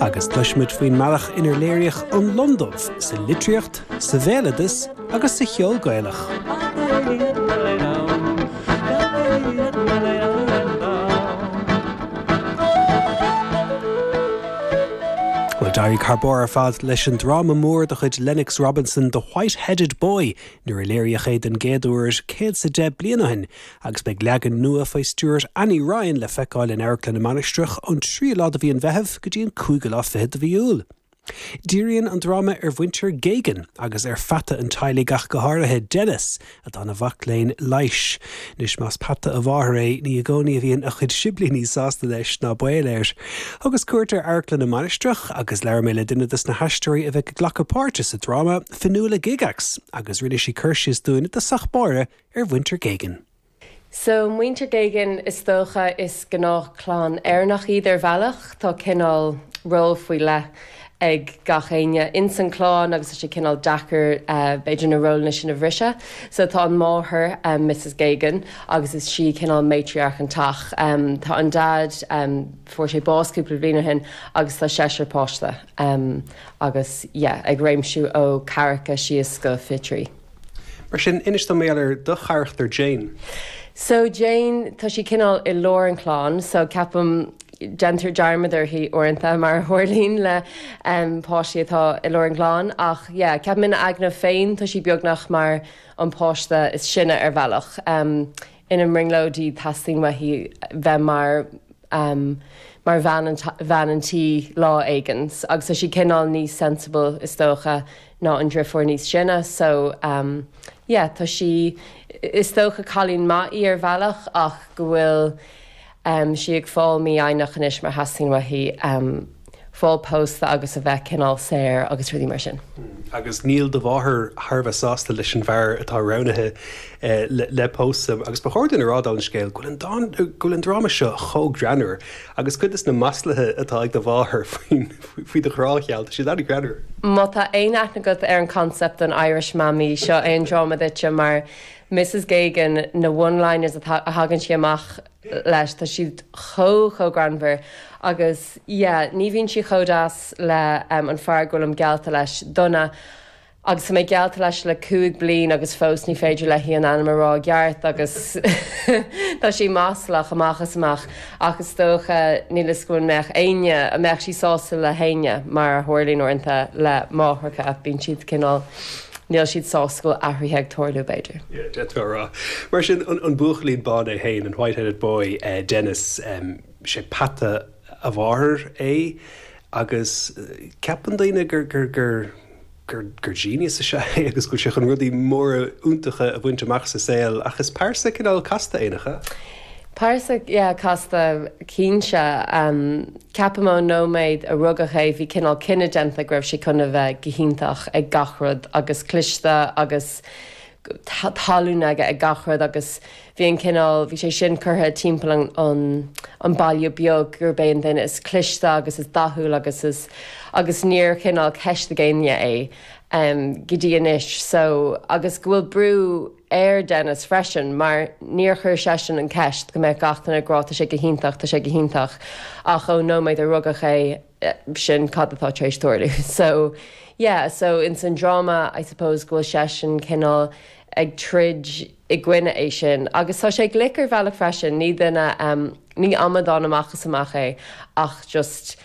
agus cloisfimid faoin mbealach inar léiríodh an lon dubh sa litríocht, sa bhéaloideas agus sa cheol Gaelach. Bhuel d'éirigh thar barr ar fad leis an dráma mór de chuid Lennox Robinson The White-Headed Boy nuair a léiríodh é den gcéad uair céad is a deich bliain ó shin agus beidh leagan nua faoi stiúir Annie Ryan le feiceáil in Amharclann na Mainistreach ón 3ú lá de mhí an Mheithimh go dtí an cúigiú lá fichead de mhí Iúil. Díríonn an dráma ar mhuintir Geoghegan agus ar pheata an teaghlaigh ach go háirithe, Denis, atá ina mhac léinn leighis. Anois más peata a mháthair é, ní i gcónaí a bhíonn a chuid siblíní sásta leis, ná baol air. Thugas cuairt ar Amharclann na Mainistreach agus labhair mé le duine dos na haisteoirí a bheidh ag glacadh páirte sa dráma, Fionnuala Gygax, agus rinne sí cur síos dúinn i dtosach báire ar mhuintir Geoghegan. So muintir Geoghegan is dócha is gnáthchlann Éireannach iad ar bhealach. Tá cineál ról faoi leith ag gach éinne ins an chlann agus tá sé cineál deacair b'fhéidir na rólanna sin a bhriseadh. So tá an máthair, Misses Geoghegan, agus is sí cineál matriarch an teach. Tá an dad fuair sé bás cúpla bhliain ó shin agus tá seisear páiste agus yeah ag réimsiú ó ceathracha síos go fiche trí. Mar sin, inis dom ar do charachtar Jane. So Jane, tá sí cineál i lár an chlann, so ceapaim déantar dearmad uirthi uaireanta mar a tharlaíonn le um, páistí atá i lár an clann, ach yeah, ceapaim ina aigne féin tá sí beagnach mar an páiste is sine ar bhealach. Um, ina brionglóidí teastaíonn uaithi bheith mar mar bhean an tí lá éigin agus tá sí cineál níos sensible is dócha ná an drifiúr níos sine so yeah tá sí is dócha cailín maith í ar bhealach ach go bhfuil Am sí ag fáil mífhoighneach anois mar teastaíonn uaithi fáil pósta agus a bheith cineál saor agus rudaí mar sin. Agus níl do mháthair thar a bheith sásta leis an bhfear atá roghnaithe le pósadh. Agus ba chóir dúinn a rá dála an scéil go bhfuil an dráma seo chomh greannmhar agus cuid des na maslaithe atá ag do mháthair faoi do ghrá gheal, tá siad an-ghreannmhar. Má tá aon aithne agat ar an concept den Irish Mammy, seo é an dráma duitse mar Misses Geoghegan, na one-liners a thagann sí amach leis, tá siad chomh, chomh greannmhar agus yeah, ní bhíonn sí chomh deas le ehm an fear go bhfuilim geallta leis, Donagh, agus tá mé geallta leis le cúig bliain agus fós ní féidir léi an ainm a rá i gceart agus tá sé maslach amach is amach ach is dócha, níl 'fhios agam an mbeadh éinne, an mbeadh sí sásta le héinne mar a tharlaíonn uaireanta le máithreacha, bíonn siad cineál. Níl siad sásta go bhfuil athruithe ag tarlú, b'fhéidir. Yeah, d'fhéadfá a rá. Mar sin, an buachaillín bán é féin, an white-headed boy, Dennis, sé peata a mháthair é agus ceapann daoine gur, gur, gur, gur, gur genius is ea é agus go bhfuil sé chun rudaí móra iontacha a bhaint amach sa saol ach is pearsa cineál casta é, nach ea? Pearsa casta, cinnte. Ceapaim ón nóiméad a rugadh é bhí cineál cinneadh déanta go raibh sé chun a bheith go hiontach ag gach rud agus cliste agus tallann aige ag gach rud agus bhí an cineál, bhí sé sin curtha timpeall an baile beag gurb é an duine is cliste agus is dathúil agus is. agus ní raibh cineál ceist ag éinne é go dtí anois. So, agus go bhfuil brú. ar Denis freisin mar níor chuir seisean an ceist go mbeadh gach duine ag rá tá sé go hiontach, tá sé go hiontach ach ón nóiméad a rugadh é sin cad atá tar éis tarlú. So, yeah, so ins an dráma I suppose go bhfuil seisean cineál ag troid i gcoinne é sin agus tá sé glic ar bhealach freisin, ní duine, ní amadán amach is amach é ach just.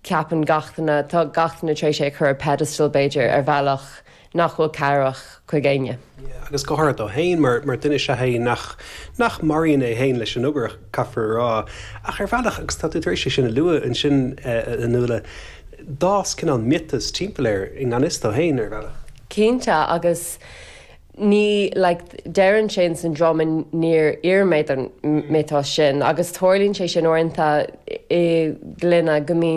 ceapann gach duine, tá gach duine tar éis é a chur ar pedestal b'fhéidir ar bhealach nach bhfuil cabhrach chuig éinne. Yeah agus go háirid dó fhéin mar mar duine sea é nach, nach maraíonn é fhéin leis an obair caithfear a rá. Ach ar bhealach, agus tá tú tar éis é sin a lua ansin eh a Nuala, d'fhás cineál miotas timpeall air i ngan fhios dó fhéin ar bhealach. Cinnte agus ní, like deireann sé in san dráma níor iarr mé don mhiotas sin agus tarlaíonn sé sin uaireanta i gclanna go mbíonn,